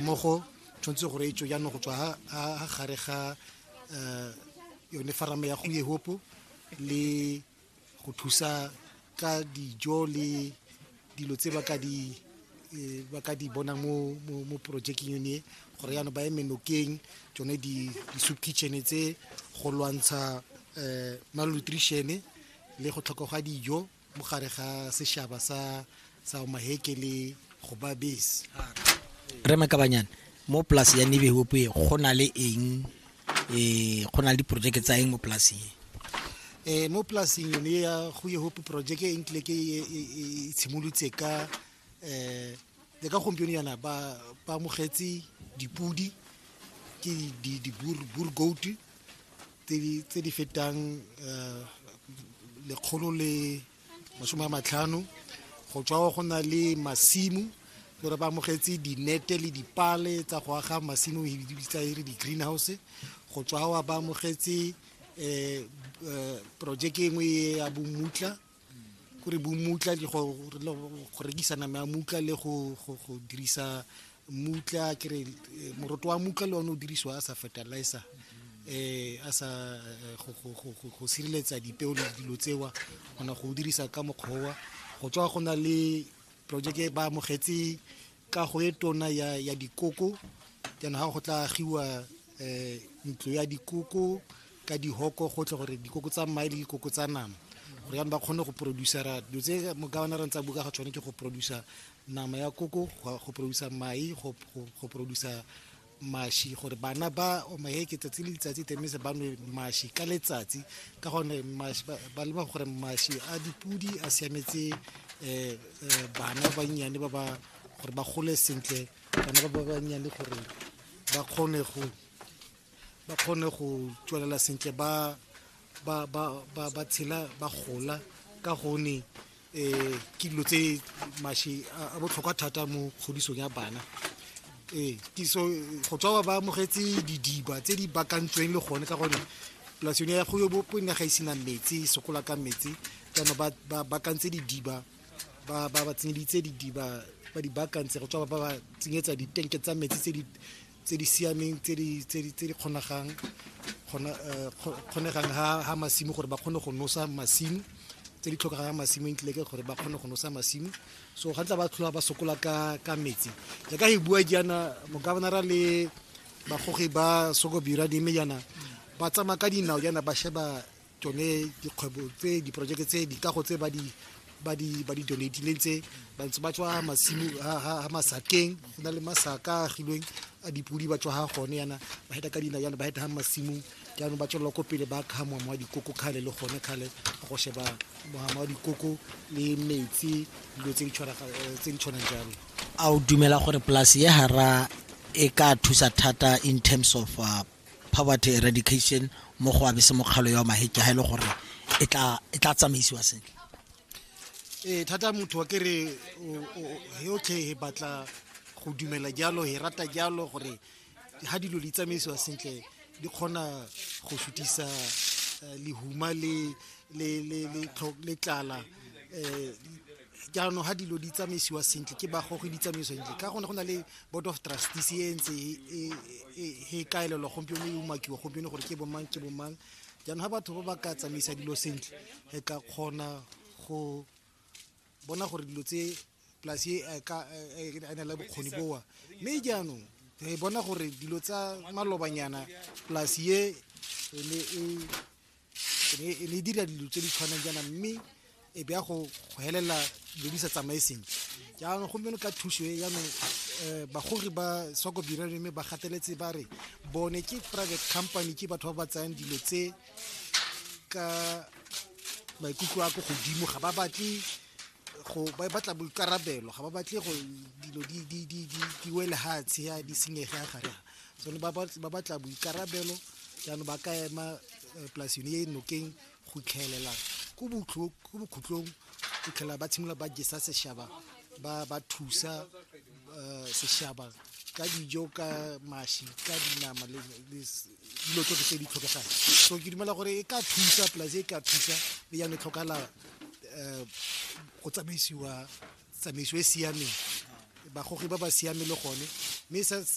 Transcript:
mmogo tshwanetse gore e tswe jaanong go tswa ha gare ga um yone farame ya go yehopo le go thusa ka dijo le dilo tse ba ka di eh, ba ka di bona mo mo mo projekeng yone gore yana ba eme nokeng tsone di di soup kitchen tse go lwantsha eh malnutrition le go tlhoka ga dijo mo gare ga sešhaba sa sa maheke le go ba base re makabanyana mo polase ya nebehope go na le eng um go na le diporojeke tsa eng mo polaseng um mo polaseng yone ya go yehope projeke e nkile ke e, e, e, e tshimolotse ka um le ka gompieno yana ba amogetse dipodi ke di-boer goat tse di fetang um lekgolo le masome a matlhano go tswa go na le masimo gore ba amogetse dinete le dipale tsa go aga masimo e bitsa e re di-greenhouse go tswa ba amogetse um eh, eh, projeke engwe ya bomutla go re bomutla ke go rekisa nama ya mutla le go dirisa mutla ke re eh, moroto wa mutla le one o dirisiwa a sa fertilizer eh a sa eh, go sireletsa dipeo le dilo tsewa gona go dirisa ka mokgowa go tswa go na le project e ba amogetse kago e tona ya, ya dikoko jaanong ga go tla agiwa um ntlo ya dikoko ka dihoko gotlhe gore dikoko tsa mmae le dikoko tsa nama gore jaanong ba kgone go producera dilo tse mokawana re ntsa buka ga tshwane ke go producer nama ya koko go producer mai go producer mashi gore bana ba omaheke tsatsi le letsatsi temise ba nwe mashi ka letsatsi ka gone ba lema gore mashi a dipudi a siametse um bana ba bannyane ba ba gore ba gole sentle bana ba ba bannyane gore ba kgone go ba kgone go tswelela sentle ba ba ba ba ba tshela ba gola ka gone um ke dilo tse mashe a botlhokwa thata mo kgodisong ya bana ee tiso go tswa ba amogetse didiba tse di bakantsweng le gone ka gone polasi yone ya kgoyo bopo ne ga e sena metsi e sokola ka metsi jaanong ba bakantse didiba ba ba tsenyeditse didiba ba di bakantse go tswa ba ba tsenyetsa ditenke tsa metsi tse di tse di siameng tse di tse di tse di kgonagang kgona eh, kgo- kgonegang ha ha masimo gore ba kgone go nosa masimo tse di tlhokegang ha masimo ntle ke gore ba kgone go nosa masimo so ga ntla ba tlhola ba sokola ka ka metsi jaaka e bua jaana mokabanara le bagogi ba sokobira dime jaana ba tsamaya ka dinao jaana ba sheba tsone dikgwebo tse diporojeke tse dikago tse ba di ba di ba di donatileng tse ba ntse ba tswa masimo ha masakeng go na le masaka a agilweng a dipodi ba tswa ha gone yana ba heta ka dina yana ba heta ha masimong jaanong ba tswelela ko pele ba kga moamo wa dikoko kgale le gone kgale go sheba moamo wa dikoko le metsi dilo tse di eh, tshwanang jalo a o dumela gore polase ye gara e ka thusa thata in terms of uh, Poverty Eradication mo go abe se mokgalo ya maheke ha e le gore e tla tsamaisiwa sentle ee thata motho wa ke re yotlhe e batla go dumela jalo e rata jalo gore ha dilo di tsamaisiwa sentle di kgona go sutisa eh, lehuma le tlala um jaanong ga dilo di tsamaisiwa sentle ke bagogi di tsamaisiwa sentle ka gone go na le board of trustees e ntse e, e, e, e kaelelwa gompieno e umakiwa gompieno gore ke bomang ke bomang jaanong ga batho ba ba ka tsamaisa dilo sentle re ka kgona go bona gore dilo tse polasi e a na le bokgoni boa mme jaanong re bona gore dilo tsa malobanyana polasi e ne e e ne e dira dilo tse di tshwanang jaana mme e be ya go helelela dilo di sa tsamaye sentle jaanong gompieno ka thuso e jaanong um eh, bagogi ba soko birane mme ba gateletse ba re bone ke private company ke batho ba ba tsayang dilo tse ka maikutlo a ko godimo ga ba batle go ba batla boikarabelo ga ba batle go dilo di wele ha tsheya di senyege ya gare so ba batla boikarabelo jaanong ba ka ema eh, polasine e nokeng go itlhaelela ko bokhutlong go tlhela ba tshimolola ba jesa seshaba ba ba thusa eh, seshaba ka dijo ka mashi ka dinama le dilo tsotlhe tse di tlhokegang so ke dumela gore e ka thusa polase e ka thusa le yane e tlhokala um go tsamaisiwa tsamaiso e siameng bagogi ba ba siameng le gone mme